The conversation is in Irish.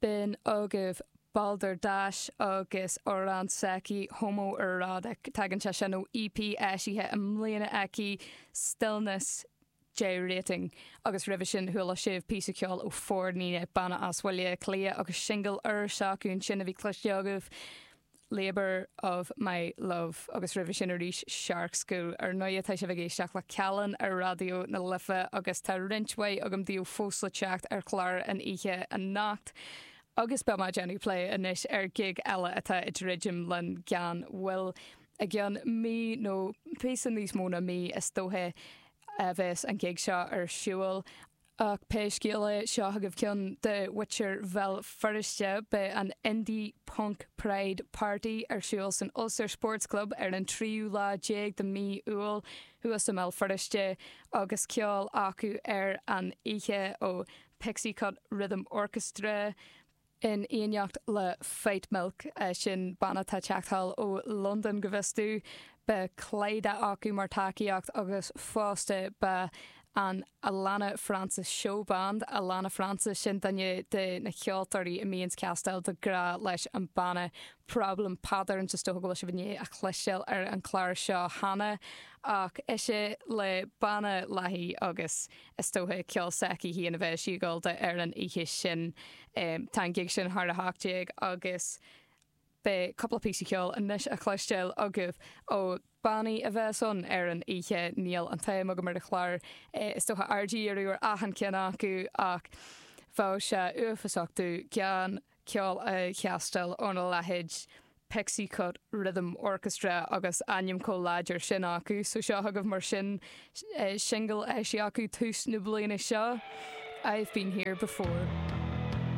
B'in agaibh, Balderdasch agus amhrán s'aici, Homoerotic, tagann sé sin ó EP eisithe i mbliana aici, Stillness Gyrating, agus roimhe sin chuala sibh píosa ceoil ó For Nina, Banna as Bhaile Átha Cliath, agus singil úr s'acu ansin a bhí cloiste agaibh. Labour of my Love agus roimhe sin arís Shark School. Ar ndóighe tá sibh ag éisteacht le Callán ar Raidió na Life agus tá roinnt mhaith agam daoibh fós le teacht ar chlár an oíche anocht agus beidh mé ag déanamh plé anois ar ghig eile atá ag druidim linn gan mhoill. I gcionn mí nó píosa níos mó ná mí is dóiche a bheas an ghig seo ar siúl. Ach pé scéal é, seo chugaibh ceann do mhuintir Bhéal Feirste. Beidh an Indie Punk Pride Party ar siúl san Ulster Sports Club ar an tríú lá déag de mí Iúil, thuas i mBéal Feirste, agus ceol acu ar an oíche ó Pixie Cut Rhythm Orchestra, In éineacht le Fightmilk, sin banna atá ag teacht thall ó Londain go bhfios domh, beidh Clyda acu mar tacaíocht agus fosta beidh an Alannah Francis Show Band, Alannah Francis, sin duine de na ceoltóirí a bhíonns ag castáil de ghnáth leis an banna Problem Patterns, is dóiche go bhfuil sibh i ndiaidh a chloisteáil ar an chlár seo cheana, ach ise le banna léithi agus. Is dóiche ceol s'aici féin a bheidh sí ag gabháil dó ar an oíche sin. Tá an gig sin thar 18 agus beidh cúpla píosa ceoil anois a chloisteáil agaibh ó bannaí a bheas ann ar an oíche. Níl an t-am agam ar an chlár, is dóiche, aird a dhíriú ar achan ceann acu ach bheadh sé uafásach domh gan. ceol a chastáil óna leithéid Pixie Cut Rhythm Orchestra agus ainm chomh láidir sin acu. So seo chugaibh mar sin singil a eisíodh acu tús na bliana seo, I've Been Here Before.